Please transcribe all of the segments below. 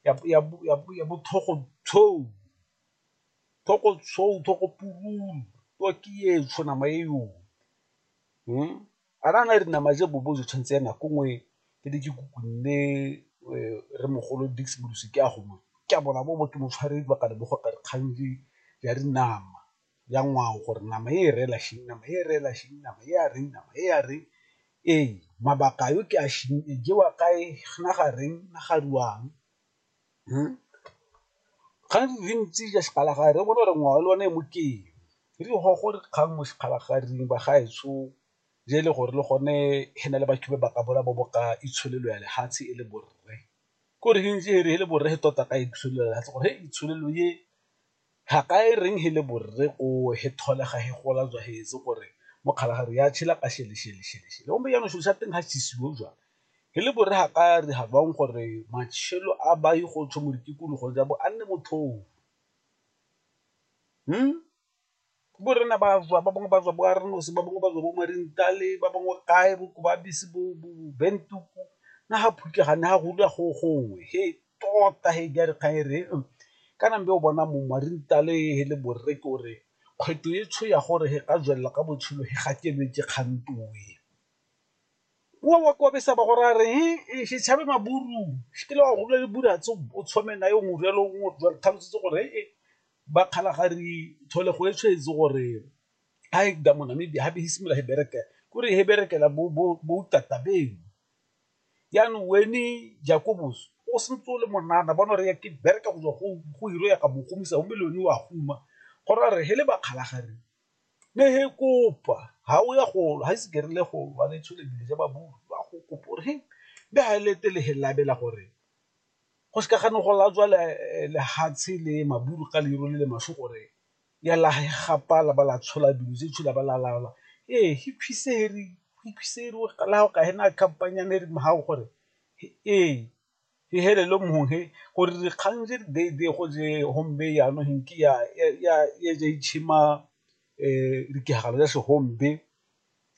ya bo tlhogo tshou, tlhogo tshou, tlhogo pururu, twaki etsho, nama e yo. A na le dinama tse bobo jo tshwantse ya nako nngwe ke ne ke kukunne re mogolo Dicks Molusi ke a go mo ke a bona bo bo ke mo tshware dibaga le bogoka dikgang di a dinama. ya ngwao gore nama e reela shing nama e reela shing nama e a reng nama e a reng ee mabaka yo ke a shing e jewa kae na ga reng na ga ruang ga re ntse ja sekgalagadi re bone gore ngwao le one e mokeng re di go gore kgang mo sekgalagading ba gaetsho je e le gore le gone e na le batho ba ba ka bola bo boka itsholelo ya lefatshe e le borre ko re ntse re le borre tota ka itsholelo ya lefatshe gore itsholelo e Haka e reng he le borre ko he thole ga he gola jwa he etse gore mo kgalagare ya tshela ka shele shele shele shele gombe jaanong selo sa teng ga chisiwe jwa he le borre haka re ha bang gore matshelo a ba ye go tsho mo ditikologo ja bo a nne motlhofo. bo rena ba tswa ba bangwe ba tswa bo a re nosi ba bangwe ba tswa bo marintale ba bangwe kae bo ba bese bo bentuku na ga phutle ga ne ga go dula go gongwe he tota he di a re kgang e re kana be o bona mongwe wa rintale le borre ke gore kgwetlho e tsho ya gore he ka tswelela ka botshelo he ga ke lwetse kgang twe. Wa wa kwa besa ba go raya re he se tshabe maburu se ke le wa go dula le buratse o tshwame nae o mo jalo o mo tlhalosetse gore he ba kgalagadi tlholego e tshwetse gore a e da monamibia gape e simolola e bereke kore e berekela boutata beno yaanong wene jakobos o sentse o le monana bona re ke bereka go tswa go hiro ya ka mogomisa o melone wa guma gore a re he le bakgalagadi ne he kopa ga o ya golo ga ise kerile golo ba ne tsholebile ja ba bua go kopa gore he be ga e lete le he labela gore go se ka ga ne go latswa lefatshe le maburu ka leru le le maswe gore ya la gapa la ba la tshola dilo tse tshola ba la laolwa ee gore ee e felele mo he gore dikgang tse di be go je gomme jaanong ge nke ya ja itšhema dikagare ya se .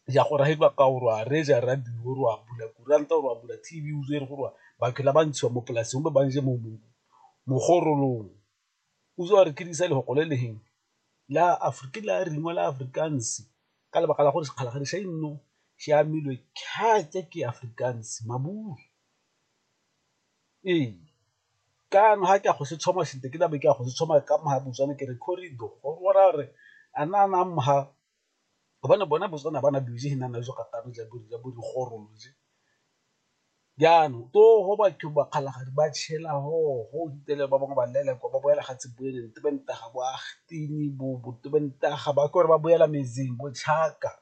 ya go raya ba kao rwa reja radio rwa bula kuranta rwa bula tv o zere gore batho la ba ntshiwa mo polaseng ba banje mo mo mogorolong o zwa re kirisa le go le leng la afrika la ringwa la afrikaans ka lebaka la gore sekgala ga re sa inno se amilwe khatsa ke afrikaans maburu ee ka no ha ke go se tshoma sente ke la be ke go se tshoma ka mo ha botswana ke re corridor go rwa re ana ana mha gobane bona Botswana ba na dilo tse di nang najo ga twe ja bo ja bo dikgorolo je, jaanong to go batho ba kgalagadi ba tšhela hoo go fitlhela ba bangwe ba lelekwa ba boela ga ba ke gore ba boela metseng bo tšhaka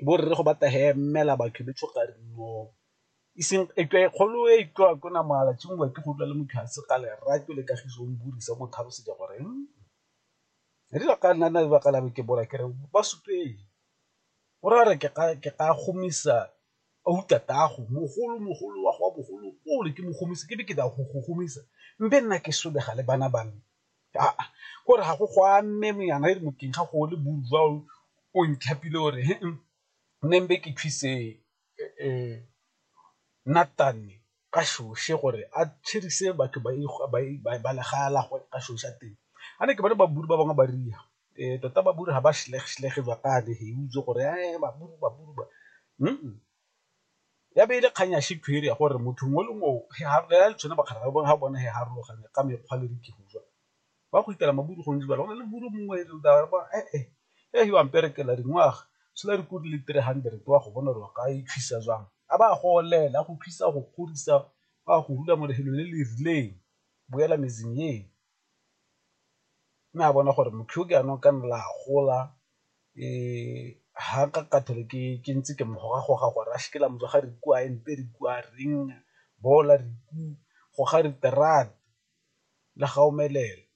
bo rre go batla hemela batho ba itshoka rinoo e seng e tswa e kgolo e tswa ko namala tšhuma ke go utlwa le motho a se ka lerato le kagiso o mmuisa motho a bosa jwa goreng. Rile ga nna lebaka la ke bola kere ba supeng o ra re ke ka gomisa tatagwe mogolo mogolo wa go a bogolo ole ke mo gomise ke be ke tla go go gomisa mme nna ke solega le bana ba me aa ke gore ga go go a mme yana e re mokeng ga go le boduwa o ntlhapile o re nne ke thuse nna . ka shoshi gore a tšhirise batho ba legae la gagwe ka shoshi a teng. Ga ne ke bona ba bangwe ba riya tota ba ga ba itse gore ya be e le kgang ya ya gore motho mongwe le mongwe ga ba kgaratlhang ga bone farologana ka mekgwa le . ba go itela maburu go ntse go na le buru mongwe e leng taba ba eh eh e yo amperekela dingwaga sela re kudi le 300 wa go bona gore ka e thusa jang a ba go olela go thusa go godisa ba go rula mo lehelo le le rileng boela mezing ye mme a bona gore motho ke anong ka nna la gola e ha ka kathole ke ke ntse ke mogoga goga gore a shikela motho ga re kwa empe re kwa reng bola re ku go ga re terata le ga omelela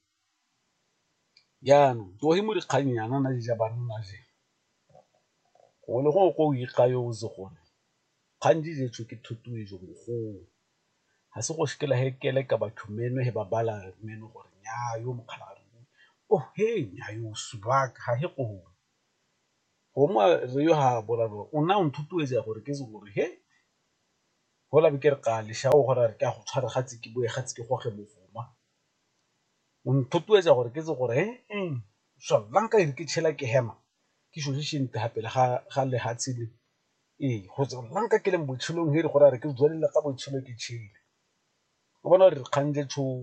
jaanong tsoge mo dikgang yana na di ja banna je gongwe le gongwe ko o ikgayo o itse gore kgang di jetswe ke thotloetso mogolo ga se go sekela he kele ka batho meno he ba bala meno gore nyaa yo mokgala a re oh he nyaa yo subaka ga he gone gongwe re yo ha bola o na o nthotloetsa gore ke itse gore he Hola be ke re ga le shao gore re ka go tshware ga tse ke boe ga tse ke goge bofuma. O nthotoetsa gore ke tse gore eng swallang ka ere ke tšhela ke hema ke šošiše nte ga pele ga ga lehatshe le ee go tswa la nka ke leng botshelong he re gore a re ke tswelele ka botshelo ke tšhele. O bona gore re kgang le tšhono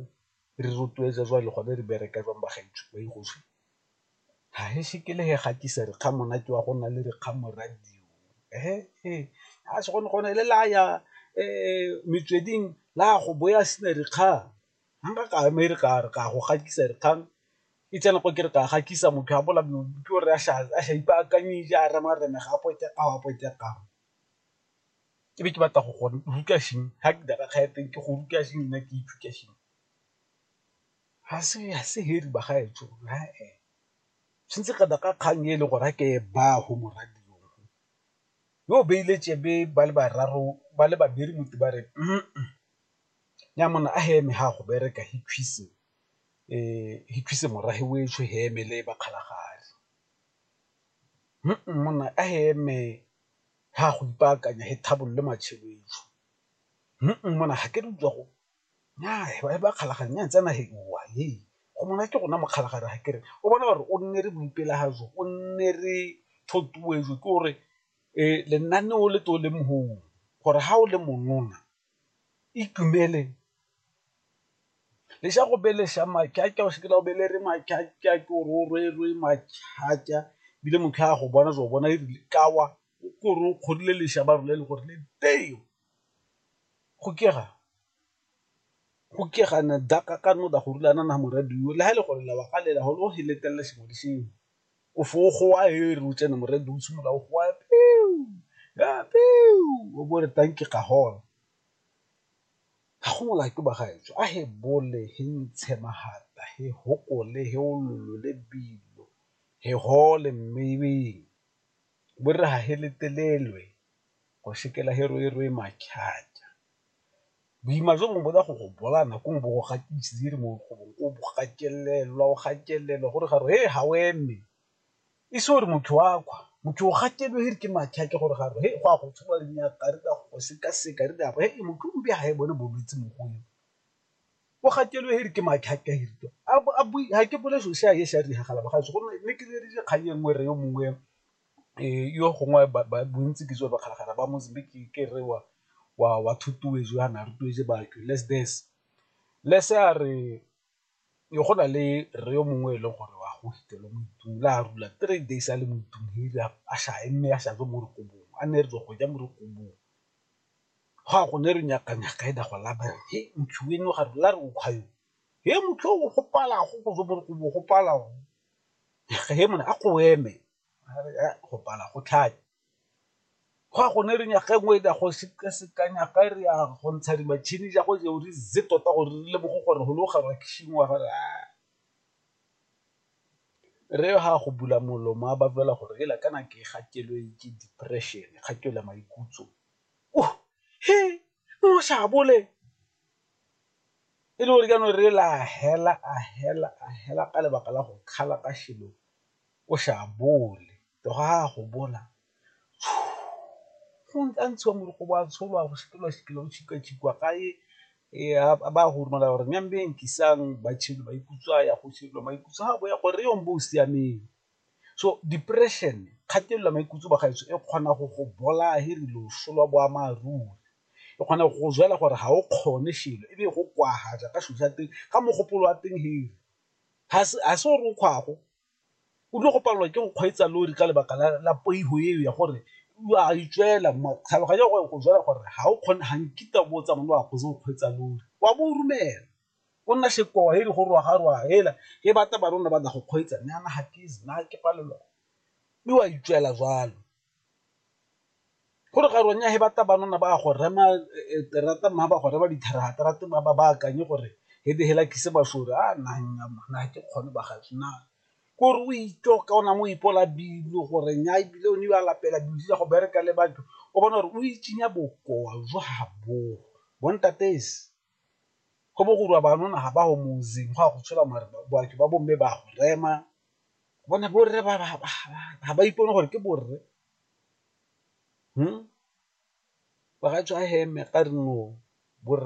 re rotloetsa jwale gone re bereka jwang ba gaetsho ba . ga ise ke le ga ke sa re kgang monate wa go nna le dikgang mo radio a se gone gone le la ya metsweding la go bo ya sena dikgang nka ka ema e re ka re ka go gatisa dikgang e tsena ko ke re ka gatisa motho a bola ke o re a sa ipaakanyeditse a rema rena ga a pote a wa pote a ke be ke batla go go ruta ga ke dira kgang ya teng ke go ruta nna ke ithuta . Ga se heri bagaetsho tshwantse kana ka kgang e le gore a ke e baya go morwadio yo o beile tšebe ba le bararo ba le babedi motho ba re nnya monna a he eme ga go bereka he thusa morafe o etsho he eme le ba kgalagadi monna a he eme ga go ipaakanya he tlhabololo matšhelo etsho monna ga ke re utlwa go ba kgalagadi nna tsena he go monate ke rona mokgalagadi ga kere o bona gore o nne re mo ipela ga jo o nne re thotloetso ke gore lenaneo o le to le mo gongwe gore ga o le monona itumele le ja go beleša maakea o seke la o bele re maakea ke gore o rwerwe mathata ebile motho a go bona o bona e rile kawa o kore o kgodile lešaba role le gore le teng. go kega go ke ga na daka ka no da go rula na na mo radio le ha e le gore la wa ga lela gore o he letella sengwe le sengwe o fo go wa e re o tsena mo radio o simolola o go wa o bo re tang ke ga gona. Ga go mola ke ba ga e tswa a he bole he ntshe magata he gopole he o le dilo he gole mme e be bo re ha he letelelwe. go sekela herohero e mathata. Boima jo bongwe bo ya go go bolaya nako nngwe bo go gatisitse mo gongwe o bo gatelelwa o gatelelwa gore ga re ga o eme, e se gore motho wa kgwa motho o gatelelwa e re ke mathata gore ga re go a go tshuba le nyaka re ka go sekaseka re a bo e motho o be ga e bone bolwetse mo go eo, o gatelelwa e re ke mathata e re a bue ga ke bone selo se a e sa diragala bagaetsho gonne ne ke ne ke dira kgang e nngwe re yo mongwe yo gongwe bontsi ke tseo bakgalakgala ba Mozambique ke re wa wa wa jaana re tuetse batho less this, less a re go na le rre yo mongwe e leng gore wa go fitlhela mo ntlung la rula three days a le mo ntlung a sa eme a sa tswe mo rekobong a nne re tswa go ja mo rekobong, go ya go ne re nyaka nyaka e ne go laba he motho eno ga re la re o kgwa yo he motho o gopala go tswa mo rekobong o gopala. a go eme go pala go tlhaya go a gone re nyaga engwe e go sekaseka nyaga e re ya go ntsha dimatšhini ja go jeo re ze tota gore re le bogo gore go le o gaba kishing wa gore re ga go bula molomo a ba bolela gore e la kana ke ga kelo e ke depression ga ke la maikutso o he o sa bole e le gore jaanong re la hela a hela a hela ka lebaka la go kgala ka shilo o sa bole to ga a go bola go nka ntshiwa moroko wa tsholwa go sekelwa sekelo go tshika tshikwa ka e a ba go romela gore nnyang beng ke isang ba tshilo ba ikutswa ya go tshilo ba ikutswa go ya gore yo mbo o siameng. So depression, kgatelelo ya maikutlo bagaetsho e kgona go go bolaya e rile o solo boammaaruri, e kgona go go jela gore ga o kgone shelo e be e go kwagaja ka selo sa teng ka mogopolo wa teng ga se o re o kgwago o tlile go palelwa ke go kgweetsa lori ka lebaka la poifo eo ya gore o a e tswela tlhaloganyo ya go jela gore ga o kgone ga nkitla o bo o tsamaya o a kgweetsa lori wa bo o romela. Go nna sekowa heli go rwaga rwaga hela he bata ba rona bada go kgweetsa ne ana hatizi na ke palelwa mi wa itswela jwalo. Go re ga ronya he bata ba rona ba go rema terata mma ba go rema ditharaga terata ba ba akanye gore he be hela kise bashore a na nya na ha ke kgone ba gaetsho na ko re o itlo ka ona mo ipola bilo gore nya ebile o ne wa lapela dilo tsa go bereka le batho o bona gore o itsinya bokowa jo ha bo bo ntatesi. go bo go rwa banona ga ba go mosing go ya go tshola mare batho ba bomme ba go rema bone borre ga ba ipone gore ke borre ba ga tswa heme ka re no borre.